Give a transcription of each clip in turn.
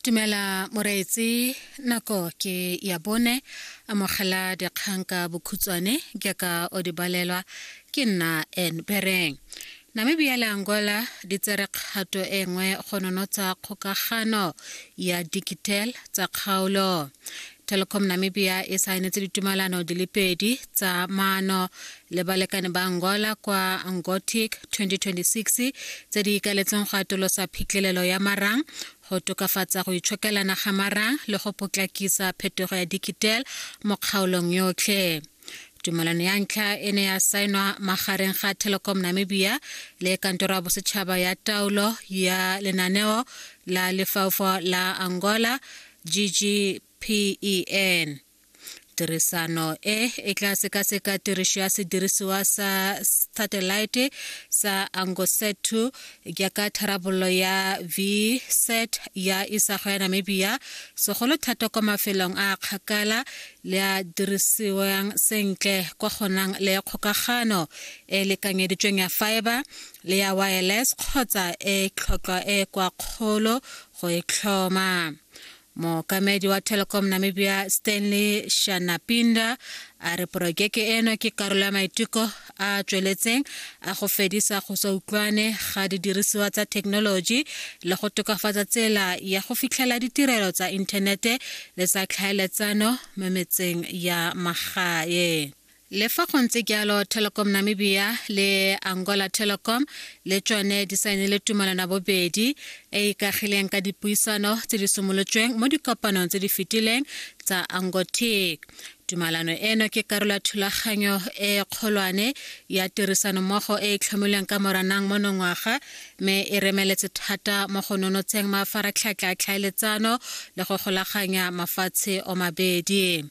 Dumela moreetsi nako ke ya bone amogela dikgang ka bokhutswane jaaka o di balelwa ke nna en bereng namibia le angola di tsere kgato e nngwe go nonotsa kgokagano ya digital tsa kgaolo telecom namibia e saenetse ditumalano di le pedi tsa maano le balekane ba angola kwa angotic 2026 tse di ikaletseng go atolosa phitlhelelo ya marang go tokafatsa go itshokelana ga marang le go potlakisa phetogo ya digital mo kgaolong yotlhe tumalano ya ntlha e ne ya saenwa magareng ga telecom namibia le kantoro ya bosetšhaba ya taolo ya lenaneo la lefaufo la angola ggpen tirisano e e tla sekaseka tirišo ya sedirisiwa sa satellite sa angoset 2 jaaka tharabololo ya vset ya isago ya namibia segolo thata kwa mafelong a kgakala le a dirisiwang sentle kwa gonang le ya kgokagano e e lekanyeditsweng ya fiber le ya wireless kgotsa e tlhotlhwa e e kwa kgolo go e tlhoma mookamedi wa telecom namibia stanley shanapinda a re porojeke eno ke karolo ya maiteko a a tsweletseng a go fedisa go sa utlwane ga didirisiwa tsa thekenoloji le go tokafatsa tsela ya go fitlhela ditirelo tsa inthanete le tsa tlhaeletsano mo metseng ya magae le fa go ntse jalo telecom namibia le angola telecom le tsone di saenile tumalano bobedi e ikagileng ka dipuisano tse di simolotsweng mo dikopanong tse di fetileng tsa angotic Tumalano eno ke karolo ya thulaganyo e kgolwane ya tirisanommogo e e tlhomilweng ka Moranang monongwaga mme e remeletse thata mo go nonotsheng mafaratlhatlha a tlhaeletsano le go golaganya mafatshe o mabedi.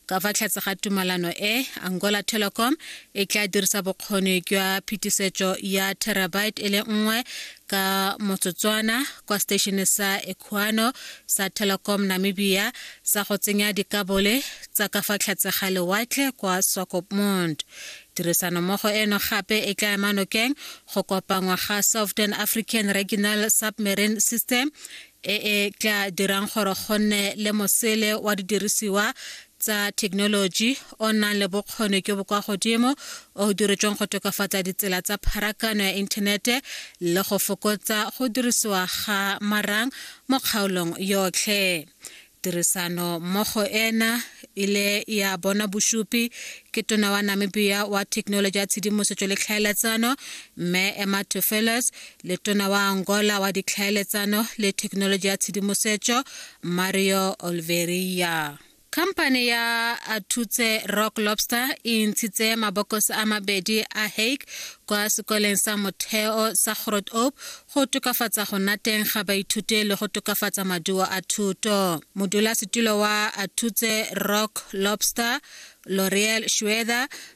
Ka fa tlhatse ga tumalano e, Angola Telecom e tla dirisa bokgoni jwa phetisetso ya terabyte e le nngwe ka motsotswana kwa stationeng sa equano sa telecom namibia sa go tsenya dikabole tsa ka fa tlhatse ga lewatle kwa swakopmund tirisanommogo eno gape e tla ema nokeng go kopangwa ga southern african regional submarine system e e tla dirang gore go nne le mosele wa didirisiwa tsa thekenoloji o nang le bokgoni jo bo kwa godimo o o diretsweng go tokafatsa ditsela tsa pharakano ya inthanete le go fokotsa go dirisiwa ga marang mo kgaolong yotlhe tirisano mmogo ena ile ya bona bosupi ke tona wa namibia wa thekenoloji ya tshedimosetso le tlhaeletsano mme emma tofeles letona wa angola wa ditlhaeletsano le thekenoloji ya tshedimosetso mario olveria Company ya Atutse Rock Lobster e ntshitse mabokos a mabedi a hake kwa sekoleng sa motheo sa Grot Ope go tokafatsa go nna teng ga baithuti le go tokafatsa maduo a thuto. Modulasetulo wa Atutse Rock Lobster L'Oreal Schwether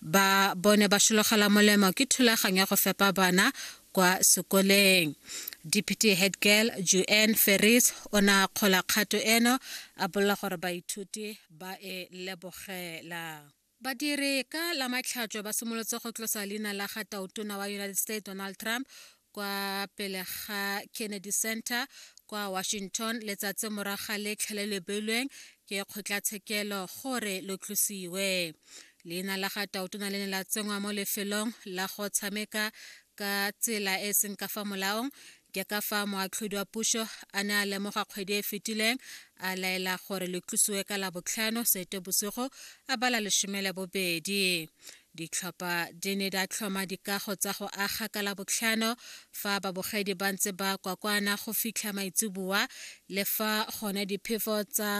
ba bone ba šologela molemo ke thulaganyo ya go fepa bana kwa sekoleng deputy head girl juan ferris o ne a kgola kgato eno a bolela gore baithuti ba e lebogela badiri ka la matlhatšo ba simolotse go tlosa leina la ga tautona wa united states donald trump kwa pele ga kennedy center kwa washington letsatsi morago ga letlha le le beilweng ke kgotlatshekelo gore lo tlosiwe leina la ga tautona le ne la tsenngwa mo lefelong la go tshameka ka tsela e e seng ka fa molaong ke ka fa moatlhodi wa puso a ne a lemoga kgwedi e e fetileng a laela gore le tlosiwe ka labotlhano sete bosigo a bala lesome le bobedi Ditlhopha di ne di a tlhoma dikago tsa go aga ka Labotlhano fa babogedi ba ntse ba kwakwana go fitlha maitseboa le fa gone diphefo tsa